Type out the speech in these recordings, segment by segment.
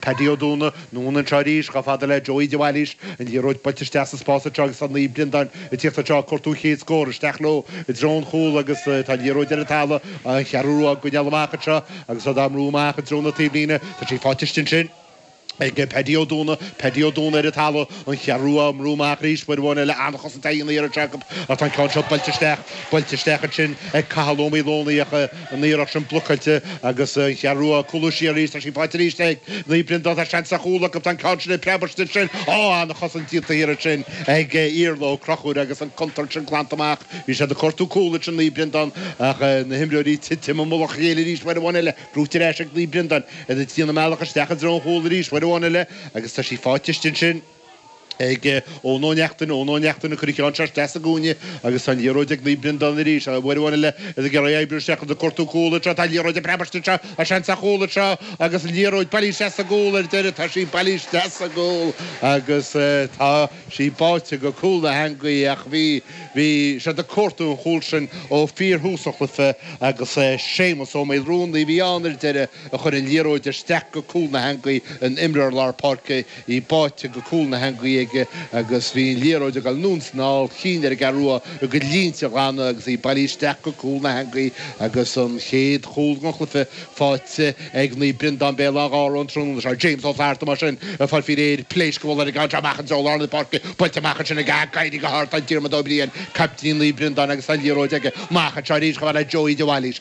Paddy Ó Dúna, anonn anseo arís, chomh fada le Joey de Bhailís, an liathróid buailte isteach sa spás anseo agus tá Naomh Breandán ag tíocht anseo ag cuartú a chéad scór, isteach leo i dtreo an chúl agus tá an liathróid ar an talamh, an Cheathrú Rua á gcoinneáil amach anseo agus iad á mbrú amach i dtreo na taobhlíne, tá sí faighte ansin ag Paddy Ó Dúna, Paddy Ó Dúna ar an talamh, an Cheathrú Rua á mbrú amach arís, uair amháin eile an-chosaint déanta arís acu ach tá an ceann seo buailte isteach, buailte isteach ansin ag Cathal Ó Maoileonaigh ach, an iarracht sin blocáilte agus an Cheathrú Rua ag cúlú siar arís. Tá sí faighte arís ag Naomh Breandán. Tá seans ar chúl acu. Tá an ceann sin ag preabadh istigh ansin. Á, an-chosaint déanta thiar ansin ag Iarla Ó Conchúir agus an contúirt sin glanta amach. Bhí siad ag cuartú cúl ansin Naomh Breandán ach na himreoirí ag titim i mullach a chéile arís uair amháin eile. Gnóite ar ais ag Naomh Breandán. Iad ag déanamh a mbealach isteach i dtreo an chúil arís uair amháin eile agus tá sí faighte istigh ansin. ag Eoin Ó Neachtain, Eoin Ó Neachtain ag cur an cheann seo isteach sa gcúinne agus tá an liathróid ag Naomh Breandán arís, Uair amháin eile is ag iarraidh oibriú isteach ag cuartú cúl anseo, tá an liathróid ag preabadh istigh anseo, tá seans ar chúl anseo agus an liathróid bailithe isteach sa gcúl ar deireadh, tá sí bailithe isteach sa gcúl agus tá sí báite go cúl na heangaí ach bhí, bhí siad ag cuartú an chúl sin ó fíorthús an chluiche agus Séamus Ó Maolruanaidh a bhí ann ar deireadh a chuir an liathróid isteach go cúl na heangaí, an imreoir lár páirce. í báite go cúl na heangaí aige agus bhí an liathróid ag dul anonn is anall, chinn ar an gCeathrú Rua a gcuid línte a ghlanadh agus í bailithe isteach go cúl na heangaí agus an chéad chúl den chluiche faighte ag Naomh Breandán Béal Átha Ghártha an tráthnóna seo. James Ó Flatharta mar sin ag fáil faoi réir pléascúil ar an gcabhairt amach anseo go lár na páirce, buailte amach ansin aige ach ag éirí go hard tá Diarmaid Ó Briain, caiptín Naomh Breandán agus tá an liathróid aige amach anseo arís chomh fada le Joey de Bhailís.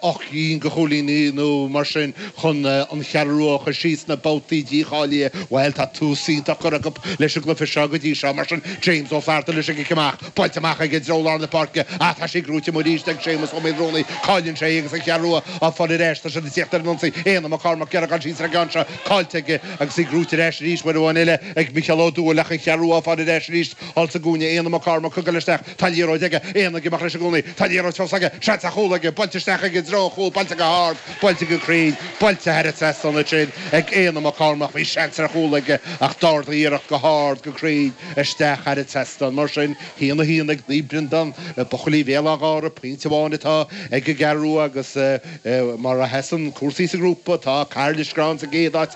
ocht gcinn de chúilíní nó mar sin chun an Cheathrú Rua a chur síos sna babhtaí dícháilithe. Bhuel, tá tús iontach curtha acu leis an gcluiche seo go dtí seo, mar sin. James Ó Flatharta leis an gcic amach. Buailte amach aige i dtreo lár na páirce ach tá sí gnóite amuigh arís ag Séamus Ó Maolruanaidh. Cailleann sé é agus an Cheathrú Rua á fáil ar ais. Tá siad ag tíocht ar an ionsaí. Éanna Mac Cormaic ag iarraidh a dhul síos ar an gceann seo. Caillte aige agus í gnóite ar ais arís. Uair amháin eile ag Micheál Ó Dúill ach an Cheathrú Rua á fáil ar ais arís thall sa gcúinne. Éanna Mac Cormaic ag dul isteach. Tá an liathróid aige, Éanna ag imeacht leis i gcónaí. Tá an liathróid fós aige, seans ar chúl aige, buailte isteach aige i dtreo an chúil, buailte go hard, buailte go cruinn, buailte thar an trasnán ansin, ag Éanna Mac Cormaic, bhí seans ar chúl aige ach d'ardaigh a iarracht go hard, go cruinn, isteach thar an trasnán. Mar sin, haon a haon ag Naomh Breandán, buachaillí Bhéal Átha Ghártha, pointe amháin atá ag an gCeathrú Rua agus mar a sheasann cúrsaí sa ghrúpa, tá Cathair Loistreáin sa gcéad áit,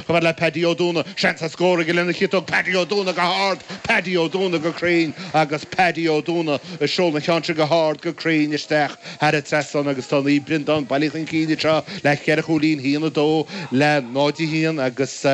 Chomh fada le Paddy Ó Dúna, seans ar scór aige lena chiotóg, Paddy Ó Dúna go hard, Paddy Ó Dúna go cruinn agus Paddy Ó Dúna a sheol an cheann sin go hard, go cruinn isteach thar an trasnán agus tá Naomh Breandán bailithe chun cinn anseo le ceithre chúilín, 1-2 le 0-1 agus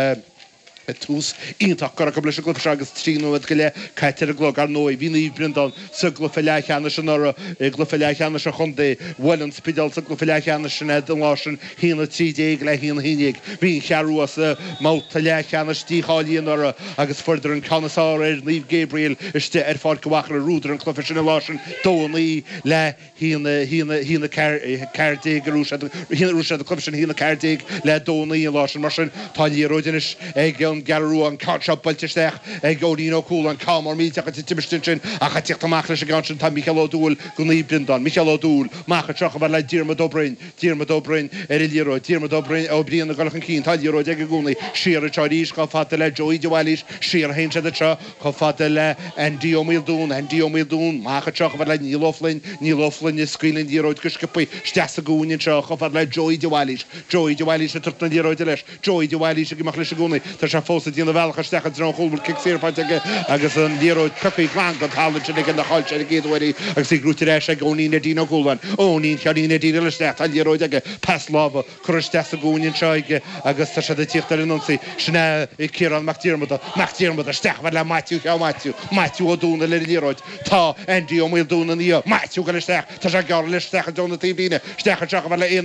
tús iontach curtha acu leis an gcluiche seo agus trí nóiméad go leith caite ar an gclog. Ar ndóigh, bhí Naomh Breandán. sa gCluiche Leathcheannais anuraidh i gCluiche Leathcheannais an Chontae. Bhuail an Spidéal sa gCluiche Leathcheannais sin an lá sin, haon a trí déag le haon a haon déag. Bhí an Cheathrú sa mbabhta leathcheannais dícháilí anuraidh agus fuaireadar an ceann is fearr ar Naomh Gabriel istigh ar Pháirc an Mhachaire fuaireadar an cluiche sin an lá sin, 2-9 le haon haon haon a ceathair ceathair déag a raibh siad a raibh siad an chluiche sin haon a ceathair déag le dó naoi an lá sin mar sin tá liathróid anois ag an gCeathrú Rua an ceann seo buailte isteach ag Eoinín Ó Cualáin an ceann mór millteach san imirt ansin ach a tíocht amach leis an gceann sin tá Micheál Ó Dúill go Naomh Breandán Micheál Ó Dúill amach anseo chomh fada le Diarmaid Ó Broin Diarmaid Ó Broin ar an liathróid Diarmaid Ó Broin Ó Briain ag dul chun cinn tá liathróid aige i gcónaí siar anseo arís chomh fada le Joey de Bhailís siar a théann sí anseo chomh fada le Andy Ó Maoldún, Andy Ó Maoldún, amach anseo chomh fada le Neil Ó Floinn, Neil Ó Floinn, ag scaoileadh an liathróid go sciobtha isteach sa gcúinne anseo chomh fada le Joey de Bhailís, Joey de Bhailís, ag tabhairt na liathróide leis, Joey de Bhailís, ag imeacht leis i gcónaí, tá sé fós ag déanamh a bhealach isteach i dtreo an chúil, bhfuil cic saor faighte aige agus an liathróid pioctha glan den talamh ansin aige, níor chaill sé ar an gcéad uair í agus í brúite ar ais ag Eoinín Neidín Ó Cualáin, Eoinín Sheáinín Neidín ag dul isteach, tá an liathróid aige, pas láimhe. curtha isteach sa gcúinne anseo aige agus tá siad ag tíocht ar an ionsaí. Sin é Ciarán Mac Diarmada. Mac Diarmada, isteach chomh fada le Maitiú sea Maitiú, Maitiú Ó Domhnaill ar an liathróid. Tá Andy Ó Maoldúin ina dhiaidh. Maitiú, ag dul isteach. Tá sé gearr anois isteach i dtreo na taobhlíne. Isteach anseo chomh fada le Éanna